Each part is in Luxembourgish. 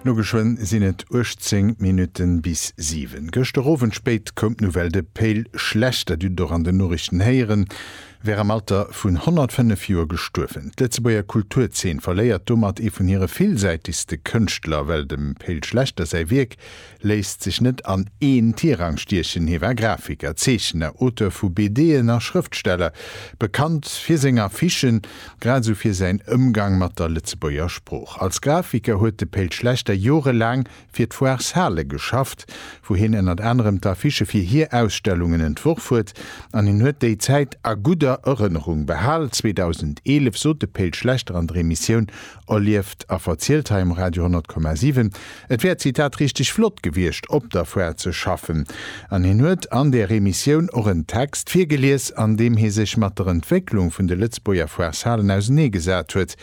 No geschwënn sinn et 18 Minutten bis 7. Gëschter Owend spéit koum d'Nouvelle de Peil schlecht, dat dut et och an den Norichten héieren, wär am Alter vun 105 Joer gestuerwen. D'Lëtzebuerger Kulturzeen verléiert domat ee vun hire villsäitegste Kënschtler. Well dem Peil Schlechter säi Wierk léisst sech net an een Tirang stiechen. Hie war Grafiker, Zeechner, Auteur vu BD'en a Schrëftsteller, bekannt fir seng Affichen, grad esou fir säin Ëmgang mat der Lëtzebuerger Sprooch. Als Grafiker huet de Péit Schlechter jorelaang fir d'Foire Sale geschafft, wou hien ënnert anerem d'Affichë fir hir Ausstellungen entworf huet. An hien huet déi Zäit a gudder Erënnerung behal. 2011 sot de Péit Schlechter an der Emissioun Erlieft a verzielt hei um Radio 100,7. Et wär, Zitat, richteg flott gewiescht op der Foire ze schaffen. An hien huet an där Emissioun och en Text virgelies, an deem hie sech mat der Entwécklung vun de Lëtzbuerger Foireshalen ausenee gesat huet,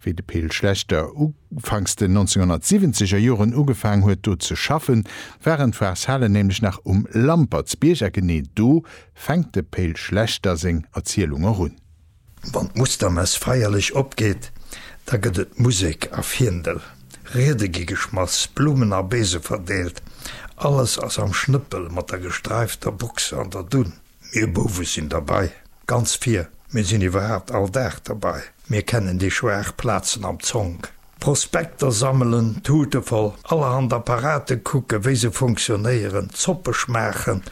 wéi de Pe'l Schlechter ufanks den 1970 er Joren ugefaang huet do ze schaffen, waren d'Foireshalen nämlech nach um Lampertsbierg. A genee do fänkt de Pe'l Schlechter seng Erzielung och un. Wann d'Mustermess feierlech opgeet, da gëtt et Musek a Fiendel, Riede gi geschmass, Blumen a Beese verdeelt, alles ass am Schnëppel mat der gestreifter Buchs an der Dunn. Mir Bouwe sinn derbei, ganz vir, mir sinn iwwerhaapt all Dag derbei, mir kennen déi schwaach Plazen am Zonk. Prospekter sammelen, d'Tute voll allerhand Apparate kucken, wéi se funktionéieren, Zoppe schmaachen,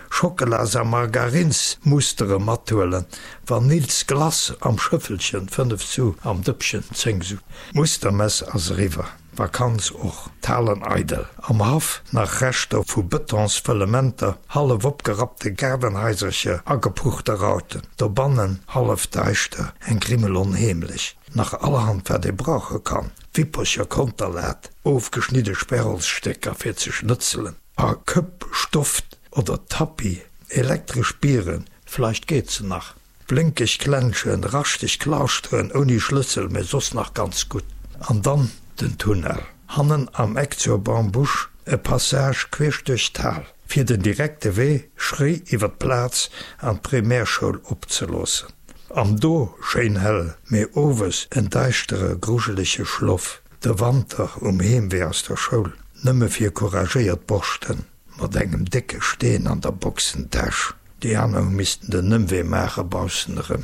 Schockelas a Margarinsmustere mathuelen, Vanills Glace am Schëffelchen, 5 Su am Dëppchen, 10 Su. D'Mustermess ass eriwwer, d'Vakanz och. D'Halen eidel, am Haff nach Reschter vu Betonsfëllementer, hallef opgerappte Gaardenhaisercher, agepuchte Rauten, dobannen hallef daischter, eng Grimmel onheemlech. Nach allerhand wat ee brauche kann, Wippercher, Konterlaat, ofgeschnidde Sperrholzstécker fir ze schnëtzelen a Këpp, Stoft oder Tappi, elektresch Biren, vleicht geet se nach, blénkeg Klenschen, raschteg Klauschteren ouni Schlëssel, mee soss nach ganz gutt. An dann den Tunnel hannen am Eck zur Bambusch, e Passage queesch duerch d'Hal. fir den direkte Wee schréi iwwer d'Plaz an d'Primärschoul opzeloossen, am do schéin hell, mee owes en deischtere grujelege Schloff, de Wanter um Heemwee aus der Schoul, nëmme fir couragéiert Borschten mat engem décke Steen an der Boxentäsch, déi aner hu missten den Ëmwee maache baussen erëm.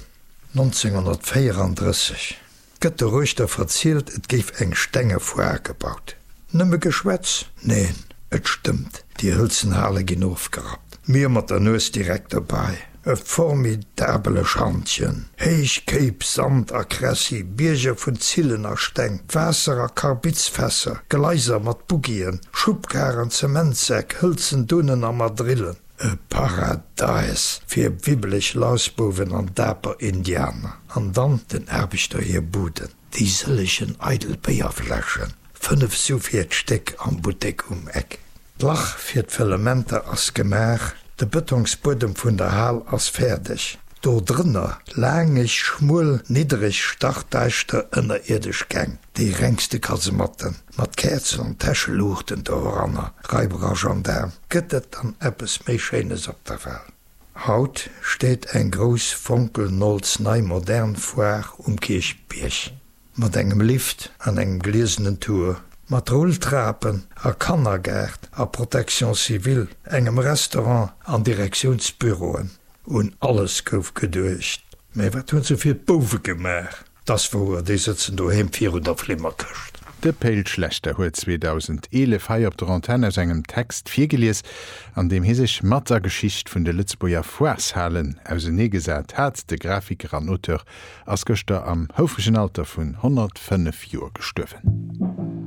1934. Gëtt de Reuther verzielt, et géif eng stenge Foire gebaut. Nëmme Geschwätz? Neen, et stëmmt, déi hëlzen Hale ginn ofgerappt, mir mat der Nues direkt dobäi. E formidabele Schantjen, héich Kéip, Sand a Kressi, Bierger vun Zillen a Steng, Waasser a Karbizfässer, Gleiser mat Buggien, Schubkaren, Zementsäck, hëlzen Dunnen a Madrillen. E Paradäis fir wibbeleg Lausbuwen an daper Indianer. An dann den Aarbechter hir Buden. Déi sëllegen eidel Béierfläschen, fënnef sou vir d'Stéck am Buttek um Eck. D'Lach fir d'Fëllementer ass gemaach, de Bëtongsbuedem vun der Hal ass fäerdeg. Do drënner, laangeg, schmuel, niddereg, stachdäischter ënnerierdesch Gäng. Dee rengste Kasematten, mat Käerzen an Täscheluuchten doranner, Raiberer Gendaarm, gëtt et dann eppes méi Schéines op der Well? Haut steet eng grouss fonkelnolls-nei modern Foire um Kierchbierg, mat engem Lift an engem gliesenen Tour, mat Rulltrapen a Kannergaart a Protection civile, engem Restaurant an Direktiounsbüroen. Un alles gouf geduecht, mä wat hunn se fir d'Bouwe gemaach? Dass wouer, déi sëtzen doheem virun der Flimmerkëscht. De Pe'l Schlechter huet 2011 hei op der Antenn aus engem Text virgelies, an deem hie sech matt der Geschicht vun de Lëtzebuerger Foireshalen auseneegesat hat. De Grafiker an Auteur ass gëschter am houfregen Alter vun 105 Joer gestuerwen.